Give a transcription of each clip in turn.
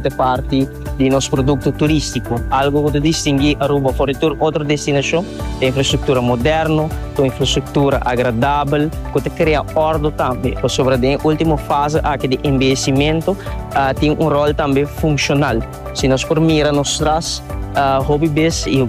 ta parti di nos produkto turístiko, algu ku ta distingui Aruba for di tur otro destinashon, ta infrastruktura moderno, ta un infrastruktura agradabel ku ta krea òrdu tambe, pasobra den e último fase aki di enbejesimentu tin un ròl tambe funshonal. Si nos por mira nos stras, hopi bes i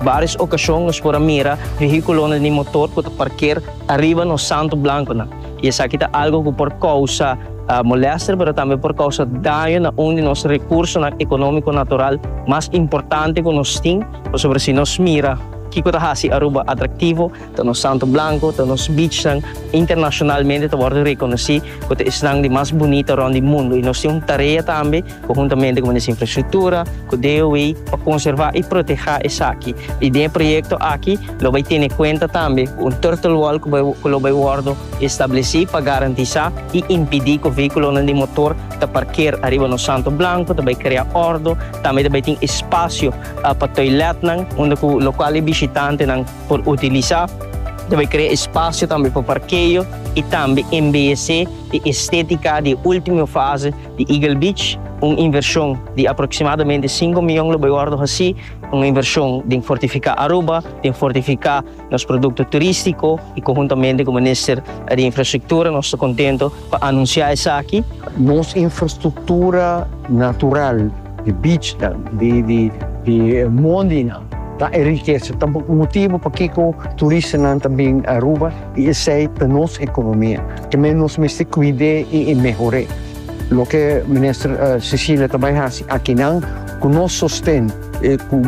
vários okashon nos por a mira vehíkulonan di motor ku ta parker ariba nos santu blankunan. i esaki ta algu ku por kousa molèster pero tambe por kousa daño na un di nos rekursonan ekonómiko natural mas importante ku nos tin, pasobra si nos mira kiko ta hasi Aruba atraktivo, ta nos Santo Blanco, ta nos bichnan internashonalmente ta wòrdu rekonosí ku ta esnan di mas bunita rònt di mundu i nos tin un tarea tambe. conjuntamente cu Minister Infrastructura, cu DOW, pa conserva y proteha esaki. Y den e proyecto aki lo bay tene cuenta tambe cu un turtle wall cu lo bay wordo estableci pa garantisa y impidi cu vehiculonan di motor ta parker ariba nos santo blanco, ta bay crea ordo, tambe ta bay tin espacio pa toiletnan unda cu locual e bishitantenan por utilisa. Ta bay crea espacio tambe pa parkeo y tambe embellece e estetica di e ultimo fase. di Eagle Beach, un invershon di aproksimadamente sinku mion lo bai wòrdu hasí, un invershon den fortifiká Aruba, den fortifiká nos produkto turístiko i konhuntamente ku minister di infrastruktura nos ta kontentu pa anunsiá esaki. Nos infrastruktura natural, di beachnan, di mondi nan, Ta e rikesa, ta bo motibu pakiko turistanan ta bin Aruba i esei ta nos ekonomia. Kemey nos mester kuid'é i i mehor'é. Loke minister Cecilia ta bai hasi akinan ku nos sosten, e ku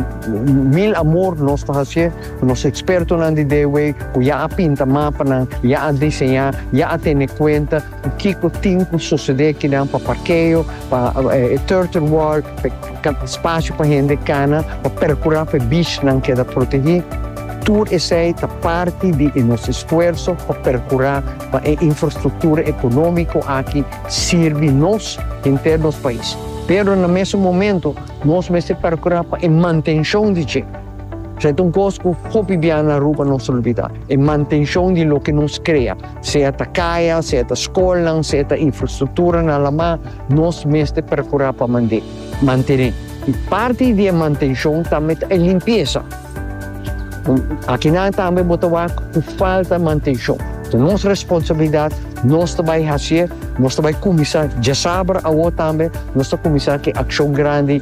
mil amor nos ta hasié ku nos ekspertonan di Deewey ku ya a pinta mapanan, ya a diseñá, ya a tene kuenta ku kiko tin ku sosede akinan pa parkeo, pa e turtle wall, Kaba spasio pa hende kana pa perkurá pa e bishnan keda protegí. Tur esei ta parti di e nos esfuerso pa perkurá pa e infrastruktura ekonómiko aki sirbi nos henter nos pais. Pero na mesun momentu nos mester perkurá pa e mantenshon di dje. Esei ta un kos ku hopi bia na Aruba nos olbidá, e mantenshon di loke nos krea, sea ta kaya, sea ta skolnan, sea ta infrastruktura na Alamá. Nos mester percura pa mantene mantene y parti di e mantencion tambe ta e limpieza. Akinan tambe bo ta wak cu falta mantencion. Ta nos responsabilidad, nos ta bay hacier, nos ta bay cuminsa, djasabra awo tambe nos ta cuminsa ki accion grandi.